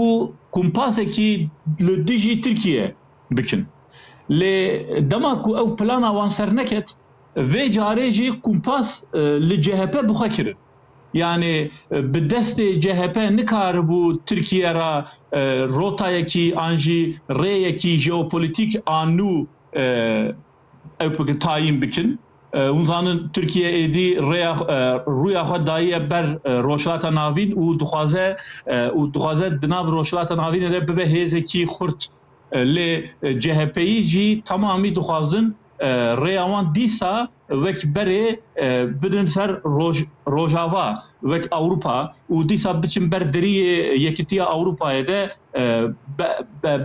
û kompasekî li dijî Tirkiyeyê bikin. Lê dema ku ew plana wan serneket, vê carê jî kompas li chp bi xwe kirin. Yanî bi destê chp nikaribû Tirkiye re rotayekî an jî rêyekî jeopolitîk a nû ew bikin tayîn bikin. Hûn zanin Tirkiye êdî rêya rûya xwe dayiye ber Rojhilata Navîn û dixwaze û dixwaze di nav Rojhilata Navînê de bibe hêzekî xurt. Lê CHPyî jî temamî dixwazin rêya wan dîsa wek berê bidin ser roj Rojava wek Ewropa û dîsa biçin ber deriyê Yekîtiya Ewropayê de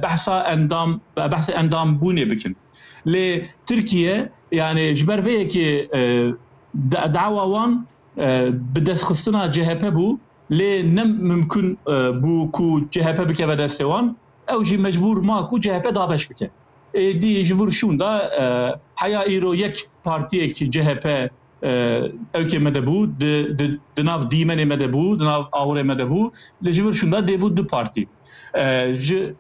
behsa endam behsê endambûnê bikin. Lê Tirkiye yanê ji ber vê yekê dawa wan bi destxistina CHP bû lê ne mimkun bû ku CHP bikeve destê wan ew jî mecbûr ma ku CHP dabeş bike. Êdî ji vir şûn de heya îro yek partiyek CHP ewkê me de bû di nav dîmenê me de bû di nav awirê me de bû lê ji vir şûn de dêbû du partî ji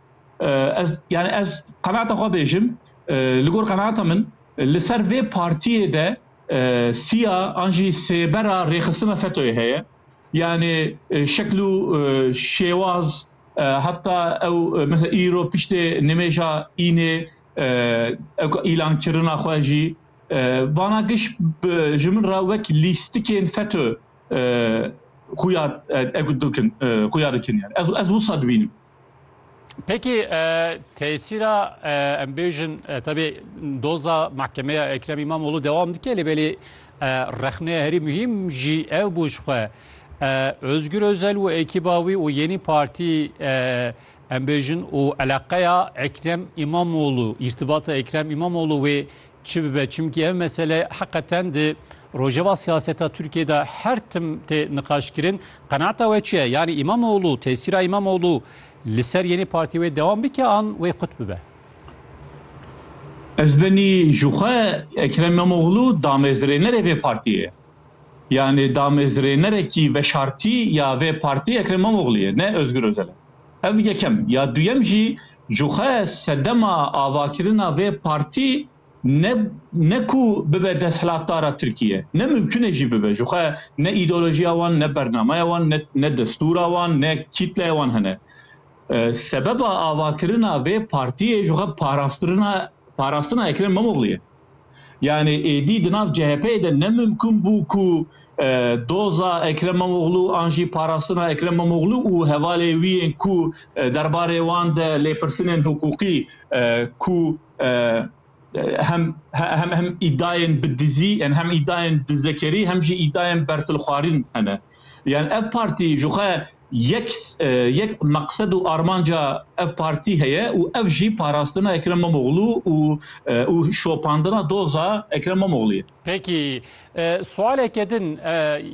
Ez yani ez qenaata xwe bêjim li gor qenaata min li ser vê partiyê de siya an jî sêbera rêxistina FETÖ'yê heye. Yani şekl û şêwaz heta ew mesela îro piştê nimêja înê ew îlankirina xwe jî vana giş ji min re wek lîstikên FETÖ xuya dikin xuya dikin yani ez ez wisa dibînim. Peki tesîra em bêjin tebê doza mahkemeya Ekrem İmamoğlu devam dike lê belê rexne herî muhîm jî ew bû ji xwe. Özgür Özel û ekîba wî û Yenî Partî em bêjin û eleqeya Ekrem İmamoğlu, îrtibata Ekrem İmamoğlu wê Çi bibe, çimkî ev mesele heqeten di rojeva siyaseta Tirkiyeyê de her tim tê niqaşkirin. Qenaata we çi ye? Yanî Îmamoglû, tesîra Îmamoglû li ser yenê partiyê wê dewam bike an wê qut bibe? Ez benî ji xwe Ekrem Îmamoglû damezrênerê vê partiyê ye. Yanî damezrênerekî veşartî ya vê partiyê Ekrem Îmamoglû ye, ne Ozgur Ozel e. Ev yekem ya duyem jî jixwe sedema avakirina vê partî ne ne ku bibe desthilatdara Tirkîye, ne mimkun e jî bibe. Jixwe ne îdeolojiya wan, ne bernameya wan, ne ne destûra wan, ne kîtleya wan hene. Sebeba avakirina vê partîyê jixwe parastirina parastina Ekrem Îmamoglû ye. Yanî êdî di nav CHP'ê de ne mimkûn bû ku doza Ekrem Îmamoglû an jî parastina Ekrem Îmamoglû û hevalê wî yên ku derbarê wan de lêpirsinên hiqûqî ku hem hem hem îdayên bi dizî yên hem îdayên dizekerî hem jî îdayên bertilxwarîn hene. Yan ev partî jixwe Yek yek meqsed û armanca ev partî heye û ev jî parastina Ekrem Îmamoglû û û şopandina doza Ekrem Îmamoglû ye. Peki sualeke din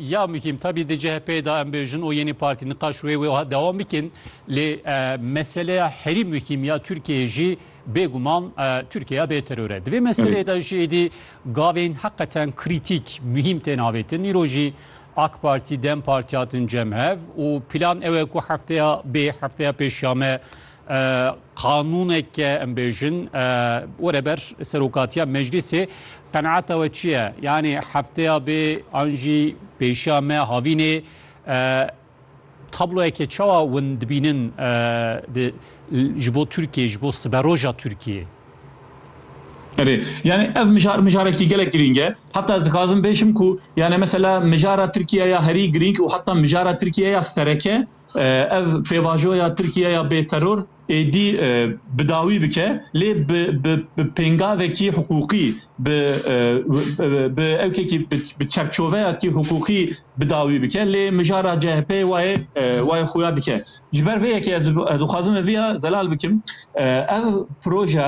ya muhîm tabî di CHP'ê de em bêjin û yeni partî niqaş wê wê dewam bikin lê meseleya herî muhîm ya Tirkiyeyê jî bêguman Tirkiyeya bê teror e. Di vê meseleyê de jî êdî gavên heqeten krîtîk muhîm tên avêtin. Îro jî AK Partî, Dem Partî hatin cem hev û plan ew e ku hefteya bê hefteya pêş ya me qanûneke em bêjin were ber serokatiya meclîsê qenaeta we çi ye? Yanî hefteya bê an jî pêşiya me havînê Tabloyekê çawa win dibînin ji bo Tirkiyê, ji bo siberoja Tirkiyê? Erê, yanî ev mijar mijarekî gelek girîng e. Heta ez dixwazim bêjim ku yanî mesela mijara Tirkiye ya herî girîng û heta mijara Tirkiye ya sereke ev pêvajoya Tirkiye ya bêteror, êdî bi dawî bike lê bi bi pêngavekî hiqûqî bi bi ewkekî bi çerçoveyakî hiqûqî bi dawî bike lê mijara CHP wayê wayê xuya dike. Ji ber vê yekê ez dixwazim viya zelal bikim ev proje